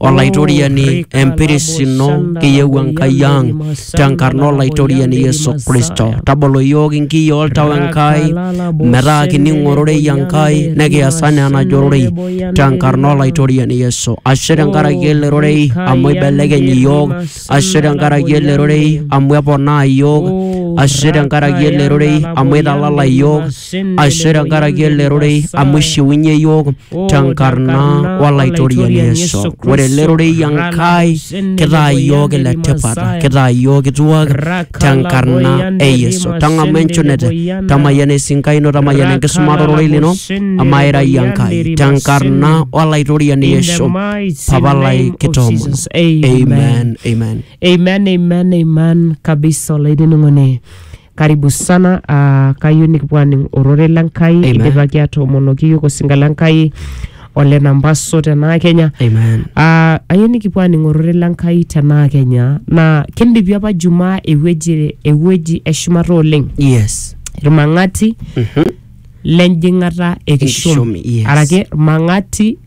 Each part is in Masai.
Olaitoriani empiris ino kiyieu Enkai ang tenkarna Olaitoriani Yesu Kristo. Tabolo iyiook inkiyii oltau Enkai metaa kining ororei Enkai nekias anaa enajo ororei tenkarna Olaitoriani Yesu. Ashe tenkaraki ele rorei amu eibelekeny iyiook, ashe tenkaraki ele rorei amu eponaa iyiook, ashe tenkaraki ele rorei amu eitalala iyiook, ashe tenkaraki ele rorei amu ishiunye iyiook tenkarna olaitoriani Yesu. Ore ele rorei Enkai kitaa iyiook ile tipat, kitaa iyiook kituak tenkarna e Yesu. Tang'amu enchunete, tamayiana esinkai ino, tamayiana enkisumata ororei lino, amaa ira iyie Enkai tenkarna olaitoriani Yesu. Papa lai kitoomono. Amen, amen. Amen, amen, amen kabisa olainining'oni. karibu sana ah, kayieu nikipuo aning ororei le nkai Amen. idipaki atoomonoki yiok osinka le nkai ole nambaso tenaa kenya Amen. Ah, ayieu nikipuo aning ororei le nkai tenaa kenya naa kindipi apa jumaa ewueji ewueji eshumata oleng Yes. irmang'ati Mhm. lenjing'ata ekishom Ekishom, yes. araki irmang'ati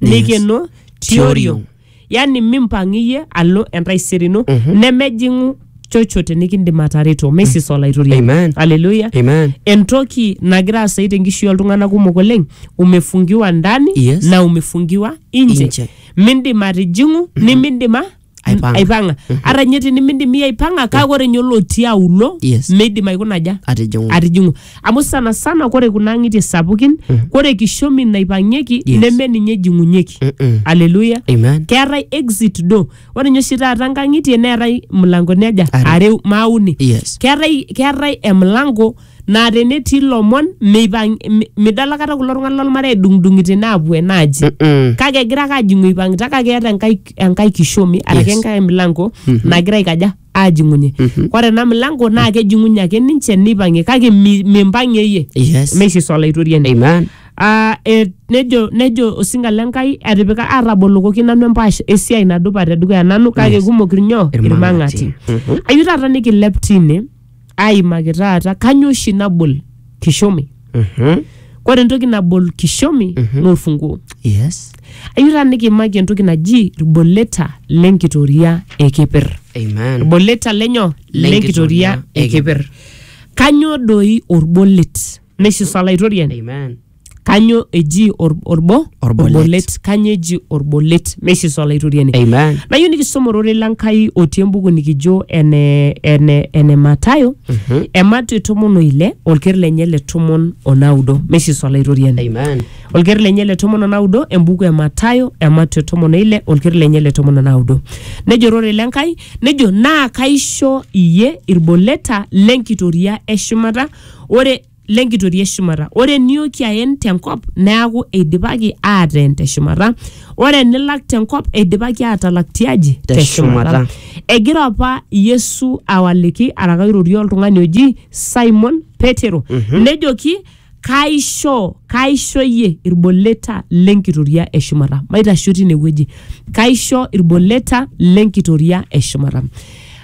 neikeno tioriong yani mimpang iyie alo entaisere ino nemejing'u chochote nikindim atareto mesis olaitoriani Amen. aleluya Amen. entoki nagira asai tenkishui oltung'anak kumok oleng umefungiwa ndani Yes. na umefungiwa inje Inje. mindim atijing'u nimindima Aipang'a. aipang'a ata ninye tinimindimi aipang'a kake ore ninye olotii aulo Yes. meidim aikuna aja atijing'u atijing'u amu sana sana kore kuna ang'itie sapukin kore kishomi naipang'ieki Yes. neme ninye ejing'unyeki Mm-mm. aleluya amen keetae exit door ore ninye oshi taata nkang'itie neetae mlangoni aja Are. are maauni yes keetae keetae emlango naa tenetii ilomon meipang mi- midol akata kulo tung'anak lolmarei edung'dung'ito enaapuo enaaji Mm-mm. kake egira ake ajing'u eipang'ita kake eeta enkae, enkae kishomi araki Yes. enkae milango nagira aikaja ajing'unye ore ena milango naa kejing'unye ake ninche neipang'ie kake mi- mimpang'ie iyie Yes. meishiso olaitoriani Amen. Ah, eh, nejo nejo osinga le nkai atipika atabolokoki nanu empaash esiai nadupa tedukuya nanu kake kumok irnyoo Irmang'ati. irmang'ati ayieu taata nikilep tine aimaki taata kanyoo oshi nabol kishomi Mhm. kore entoki nabol kishomi naa olfunguo Yes. ayieu taa nikiimaki entoki naji ilboleta lenkitoria ekipir Amen. ilboleta lenyo lenkitoria Lenkitoria ekipir kanyoo doi olbolet neisisa olaitoriani Amen. kanyo eji or- orbo Orbolet. orbolet kanyo eji orbolet meishiso olaitoriani Amen. nayieu nikisoma ororei le Nkai otii embuku nikijo ene, ene, ene Matayo Mhm. emato tomon oile olker lenye le tomon onaudo meishiso olaitoriani Amen. olker lenye le tomon onaudo embuku e Matayo emato tomon oile olker lenye le tomon onaudo nejo ororei le Nkai nejo naa kaisho iyie irboleta lenkitoria eshumata ore lenkitoria e shumata ore eniyooki aen tenkop neaku eidipaki aateen te shumata ore enilak tenkop eidipaki aatalak tiaji Te te shumata shumata. egira apa yesu awaliki araka airorie oltung'ani oji simon petero nejoki kaisho kaisho iyie irboleta lenkitoria e shumata maitasho tine wueji kaisho irboleta lenkitoria e shumata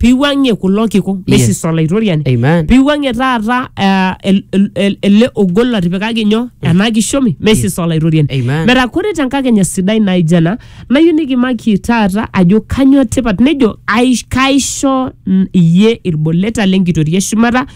piwuang'ie kulo kiku meisisa olaitoriani Amen. piwuang'ie taata eh, el- el- el- ele ogol lotipikaki nyoo ena kishomi meisisa olaitoriani Amen. metaa kore tenkakenya sidai naijo ena nayieu nikimaki taata ajo kanyoo tipat nejo "Aish- kaisho mm, iyie ilboleta lenkitoria e shumata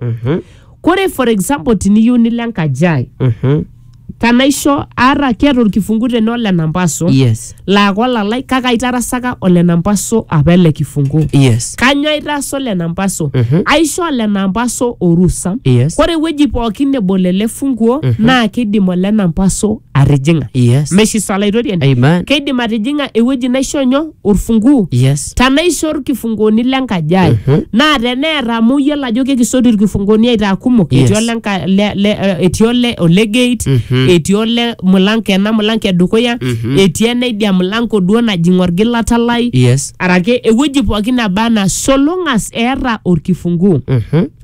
Mhm. kore for example tiniyieu nilo enkaji ai Mhm. tanaisho aata keeta olkifungu tene ole nampaso yes laa kolalai kake aitarasaka ole nampaso apa ele kifungu yes kanyoo aitaasa ole nampaso Mhm. aisho ole nampaso orusa yes kore ewueji pookin nebol ele funguo naa kidim ole nampaso atijing'a Yes. meshiso alaitoriani Amen. keidim atijing'a ewueji naisho nyoo orfunguu Yes. tanaisho irkifunguoni lenkaji ai Mhm. naa teneeta amu iyiolo ajo kekisoti irkifunguoni aitaa kumok Yes. etii ole nka- le- le- eh, etii ole ole gate Mhm. etii ole mulango ena mulango edukuya Mhm. etii enaidia mulango duo najing orgilata lai Yes. arake ewueji pookin naba anaa solongas eeta orkifunguu Mhm.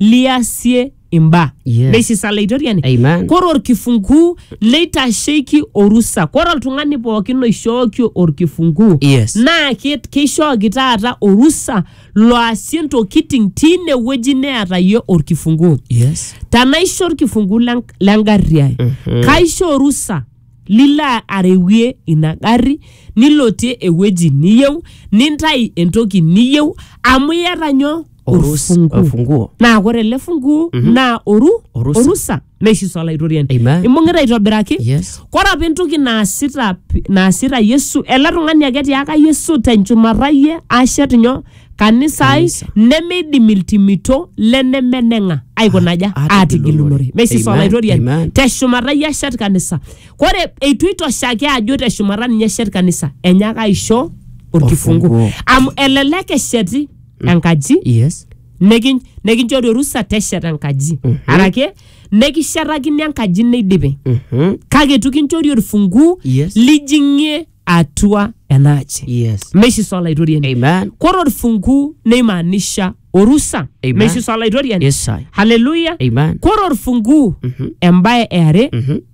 liasie imbaa Yes. neisisa laitoriani Amen. kore orkifunguu neitasheki orusa kore oltung'ani pookin oishooki orkifunguu Yes. naa ke- keishooki taata orusa loasie ntokiting tine wueji neata yie orkifunguu Yes. tanaisho orkifunguu le- le ngarri ai kaisho orusa lilo arewie ina garri nilotie ewueji niyieu nintai entoki niyieu amu iyata nyoo Orus- Orfungu. orfunguo naa kore ele funguo naa oru Orusa. orusa meishiso olaitoriani Amen. imbung'ita aitobiraki yes kore apa entoki naasita p- naasita yesu ele tung'ani ake tiaka yesu tenchumata yie ashet nyoo kanisa ai Kanisa. nemeidim iltimito lenemeneng'a aikunaja Ah, aatigilunore meisisa Amen, olaitoriani amen. teshumata yie ashet kanisa kore eitu itoshaki ajo teshumata ninye eshet kanisa enyaaka aisho orkifungu Orfunguo. amu elelek esheti enkaji yes niki- nikinchori orusa tesheta enkaji arake nikishetakini enkaji neidipi Mhm. kake itu kinchori orfunguu Yes. lijing'ie atua ena aji yes meshi sa olaitoriani amen kore orfunguu neimaanisha orusa Amen. meshi sa olaitoriani yes I. haleluya Amen. kore orfunguu embaye eare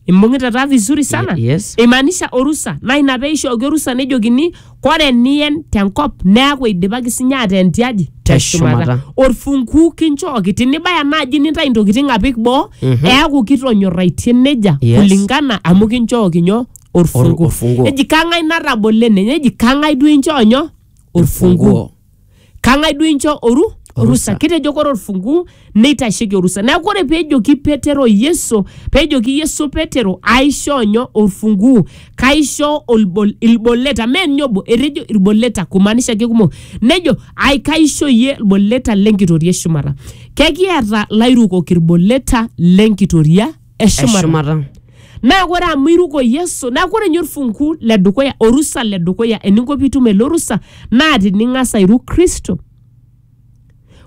imbung'ita taa vizuri sana Ye- yes. imaanisha orusa naa ina pee ishooki orusa nejokini kore niyen tenkop neaku eidipaki sinye ateen tiaji Teshumata. orfunguu kinchooki tinibaya naaji nintai intokitin apik boo Mhm. eaku kitonyorraitie nejia Yes. kulingana amu kinchooki nyoo Or- orfunguu orfunguu. neji kang'ai natabolo ene neji kang'ai duo inchoo nyoo orfunguu Orfunguu. Kang'ai duo incho oru orusa? Orusa. Kitejo kore olfunguu neitasheki orusa. Neaku ore peejoki Petero Yesu, peejoki Yesu Petero aishoo nyoo? Olfunguu. Kaishoo olbol, ilboleta, mee ninye obo, etejo ilboleta kumaanisha kekumok. Nejo ai kaisho iyie ilboleta le nkitoria e shumata. Kekiata lairukok ilboleta le nkitoria? eshumata eshumata naa ore amu iruko yesu naa ore ninye orfunku le dukuya orusa le dukuya eninko piitum ele orusa naa tining'as airu kristo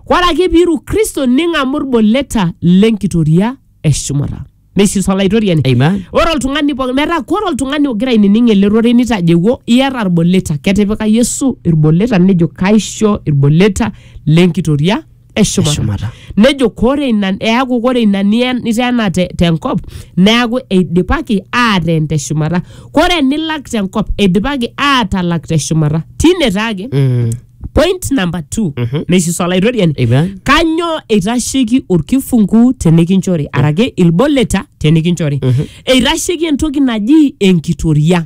ore ake piiru kristo ning'amu ilboleta lenkitoria eshumata neisisa olaitoriani Amen. ore oltung'ani pooki metaa kore oltung'ani ogira ainining ele rorei nitajewuo iyata ilboleta ketipika yesu ilboleta nejo kaisho ilboleta lenkitoria eshumata eshumata nejo kore ina eaku kore ina nie- niteena te- tenkop neaku eidipaki aateen teshumata kore enilak tenkop eidipaki aatalak teshumata tine taake Mm. point number two Mhm. neisisa olaitoriani Amen. kanyoo eitasheiki olkifungu tenikinchori araki ilboleta tenikinchori eitasheiki entoki naji enkitoria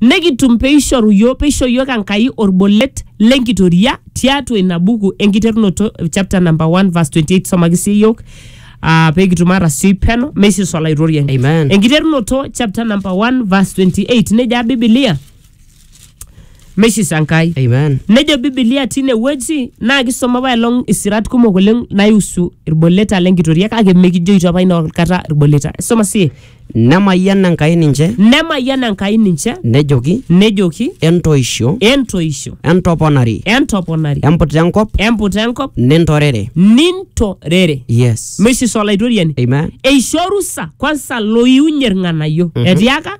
Nekitum peishoru iyiook peisho iyiook Enkai olbolet lenkitoria tiatua ina buku enkiterunoto chapter number 1 verse 28 somaki sii iyiook ah, pekitum atasioi peno meisisa olaitoriani. Amen. Enkiterunoto chapter number 1 verse 28 nejo Bibilia meisisa Enkai. Amen. Nejo Bibilia tine wueji naa kisoma apaelong isirat kumok oleng naihusu ilboleta lenkitoria kake mekijoito apa ina kata ilboleta. Soma sii. Nemayian Enkai ninche, Nemayian Enkai ninche, nejoki, nejoki, Entoisho, Entoisho, entoponari, entoponari, emputa enkop, emputa enkop, nintorere. nintorere. Yes. Meisisa Olaitoriani. Amen. eisho orusa kwansa loiunye irng'anayio etiaka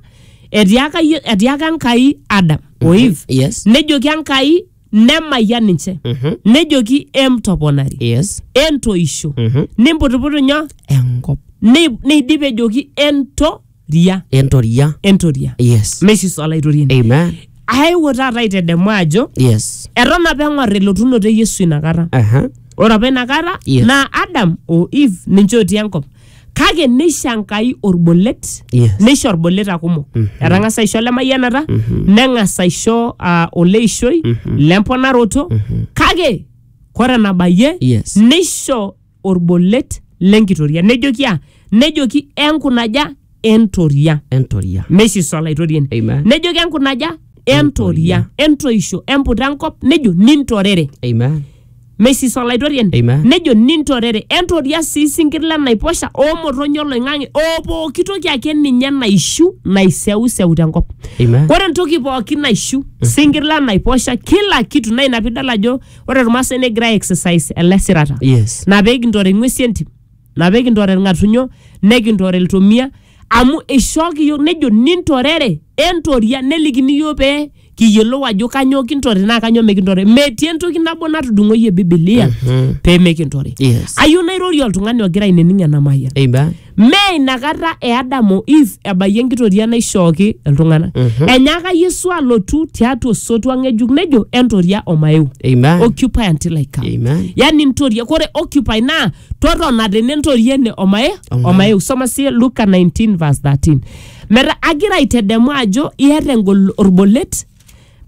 etiaka Ye- etiaka Enkai Adam o Eve Yes. nejoki Enkai nemayian ninche Mhm. nejoki emtoponari yes entoisho Mhm. nimputuputu nyoo enkop Nei- neidip ejoki entoria entoria entoria yes meshi solaitoriani amen aewuo taata aitedemu ajo yes eton apa eng'or elotunoto e yesu inakata aha ore apa inakata Yes. naa adam o eve ninche otii enkop kake neisho enkai olbolet Yes. neisho olboleta kumok etang'asa aisho lemayianata neng'as aisho ah, oleishoi lemponaroto kake kore enabayie Yes. neisho olbolet lenkitoria nejoki a nejoki enkunaja entoria entoria meisho iso olaitoriani Amen. nejoki enkunaja entoria entoisho emputa enkop nejo nintorere Amen. mesis olaitoriani Amen. nejo nintorere entoria sii sinkir lenaiposha oomotonyi oloing'ang'e oo pooki toki ake ninye naishu naiseuseu tenkop Amen. ore entoki pooki naishu sinkir lenaiposha kila kitu naa ina piidol ajo ore irmaasai negira ai exercise ele sirata Yes. na pee kintore ing'uesi entim na pee kintorere ilng'atunyo nikintorere iltomia amu eishooki iyiook nejo nintorere entoria nelikini iyiook pee kiyiolou ajo kanyoo kintorere naa kanyoo mikintorere metii entoki nabo natudung'oyie bibilia pee mikintorere Yes. ayieu nairorie oltung'ani ogira aining ena mayian Eiba. mee inakata e Adam o Eve ebayie enkitoria naishooki iltung'anak enyaaka Yesu alotu tiatua osotua ng'ejuk nejo entoria omaeu Eiba. occupy until I come Amen. yani ntoria kore occupy naa totona tene ntoriene omae omae usoma sie luka 19 verse 13 metaa agira aitedemu ajo iata engol orbolet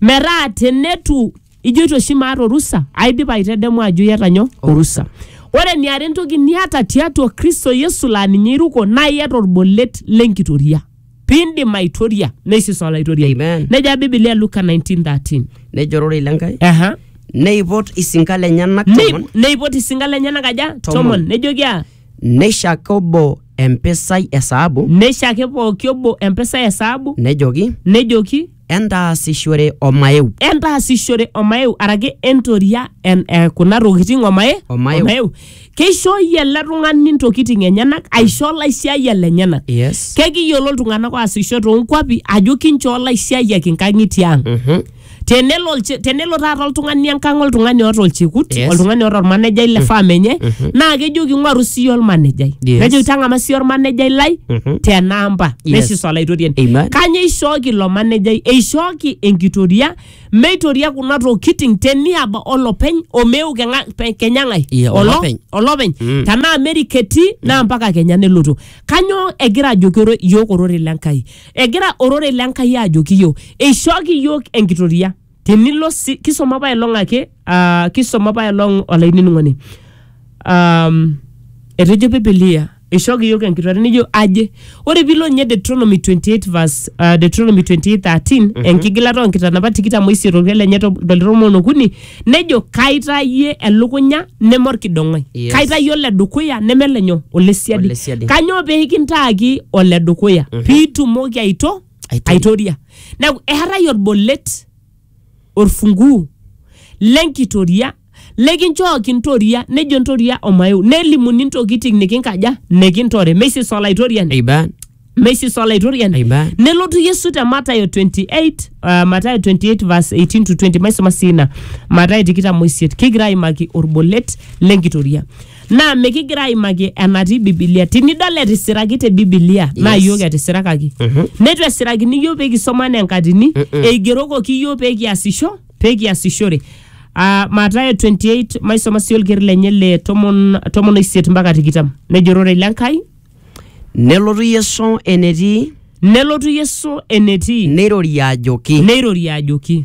metaa tenetu ijoito oshi maata orusa aidipa aitedemu ajo iata nyoo orusa ore eniare entoki niata tiatua kristo yesu laa ninye iruko naa iata orbolet lenkitoria piindim aitoria neisis olaitoriani Amen. neja bibilia luka 1913 nejo ororei le nkai Aha. neipot isinka lenyenak Nei- tomon neipot isinka lenyenak aja Tomon. tomon nejoki a neishaki obo empisai e saabu neishaki pooki obo empisai e saabu nejoki nejoki entaasishore omaeu entaasishore omaeu araki entoria en, eh, kuna tokitin omae Omaeu. keishooyie ele tung'ani ntokitin enyenak aisho laisiayiak lenyenak yes kekiyiolo iltung'anak oasisho toonkuapi ajo kinchoo laisiayiak inkang'itie ang Mhm. tenelo olche- tenelo taata oltung'ani enkang oltung'ani oota olchekut Yes. oltung'ani oota ormanejai le farm enye naa kejoki ng'oru siiyie ormanejai Yes. nejoki tang'ama siiyie ormanejai lai Mhm. tenamba Yes. neshisu olaitoriani Amen. kanye eishooki ilo manejai eishooki enkitoria meitoria kuna tokitin teniaba olopeny omeu keng'a- pe- kenya ng'ae Yeah, Olo- olopeny. olopeny Mm. tenaa amerika etii naa mpaka kenya nelotu kanyoo egira ajoki oro- yiok ororei le nkai egira ororei le nkai ajoki yiok eishooki yiok enkitoria tinilo si kisoma apaelong ake uh, kisoma apaelong olainining'oni um, etejo bibilia ishooki yiok enkitore nijo aje ore piilo ninye deuteronomy 28 verse, uh, deuteronomy 28 13 mm-hmm. enkigilata oonkitanapat tikitam oisiet olkuet lenye to- toltomon okuni nejo kaitayie elukunya neme orkidong'oi Yes. kaitayie ole dukuya neme lenyo ole siadi Ole siadi. kanyoo pee kintaaki ole dukuya mm-hmm. piitumoki aito Aitoria. aitoria neeku eetae orbolet orfunguu lenkitoria lekinchoo kintoria nejo ntoria omaeu nelimuni ntokiting nikinkaja nikintore meisis olaitoriani Amen. meisis olaitoriani Amen. nelotu yesu te matayo 28 uh, matayo 28 verse 18 to 20 maisoma sii ina matayo tikitam oisiet kigira aimaki orbolet lenkitoria Naa mikigira aimaki enatii Bibilia. Tinidol etisiraki te Bibilia, naa Yes. iyiook etisirakaki. Neitu esirakini iyiook pee kisoma anaa enkatini, eigerokoki iyiook pee kiasisho, pee kiasishore. Ah, Mathayo 28, maisoma sii olker lenye le tomon tomon oisiet mpaka tikitam. Nejo ororei le Nkai, Nelotu Yesu enetii, nelotu Yesu enetii, neirorie ajoki, neirorie ajoki.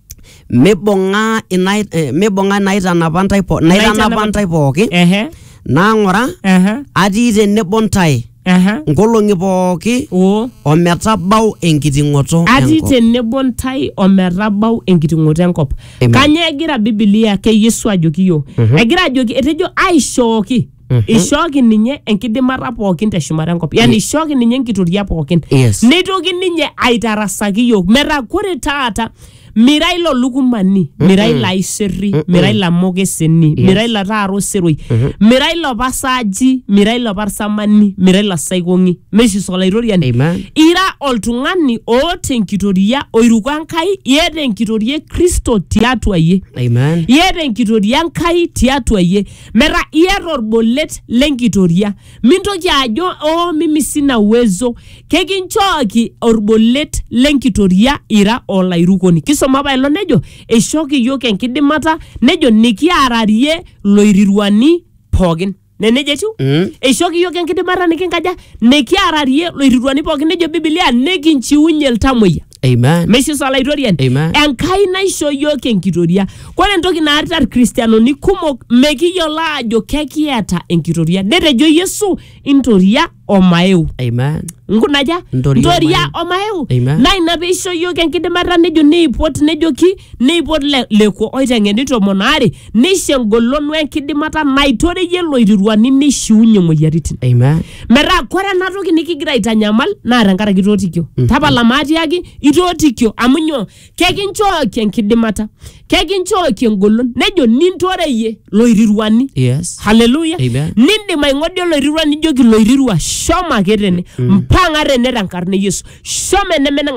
mibung'a ina eh, mibung'a inaitanapa ntae po- naitanapa Inaitanapa- ntae pooki Ehe. naang'ura Ehe. atii tenebo ntae Ehe. nkolong'i pooki Oo. ometabau enkiting'oto atii enkop. tenebo ntae ometabau enkiting'oto enkop Amen. kanyoo egira bibilia ake yesu ajoki yiok egira ajoki etejo aishooki Mhm. ishooki ninye enkidimata pookin teshumata enkop yani ishooki ninye enkitoria pookin Yes. neitoki ninye aitarasaki yiok metaa kore taata mira ilo lukumani mira ilo aiserri mira ilo amokeseni mira ilo taara oseroi mira ilo pasaaji mira ilo parsamani mira ilo saikong'i mesis olaitoriani Amen. ira oltung'ani oota enkitoria oiruko enkai iyata enkitoria e kristo tiatua yie Amen. iyata enkitoria enkai tiatua yie Metaa iata olbolet le nkitoria. Mintoki ajo oo mimi sina uwezo. Kekinchooki olbolet le nkitoria ira olairukoni. Kisoma apa ilo nejo eishooki iyiook enkidimata nejo nikiararie loiriruani pookin. Ne neija etiu? Mm. Eishooki iyiook enkidimata nikinkaja? Nikiararie loiriruani pookin nejo Biblia nikinchiunye iltamuoyia. Amen. meisho sa olaitoriani Amen. enkai naisho yiok enkitoria kore entoki naarita irkristianoni kumok mekiyiolo aajo kekiata enkitoria netejo yesu intoria omaeu Amen. nkunaja Ntoria omaeu Amen. naa ina peisho yiok enkidimata nejo neipot nejoki neipot le- lekua oiteng'eni tomon aare neisho engolon wenkidimata naitoreyie loiriruani neishiunye moyiaritin Amen. metaa kore ena toki nikigira aitanyamal naa tenkaraki itootikio tapala maatiaki itootikio amu nyoo kekinchooki enkidimata kekinchooki engolon nejo nintoreyie loiriruani Yes. haleluya Amen. nindim aing'odia oloirirua nijoki loirirua shomo ake tene mpang'a tene tenkarna e yesu shomo enemeneng'a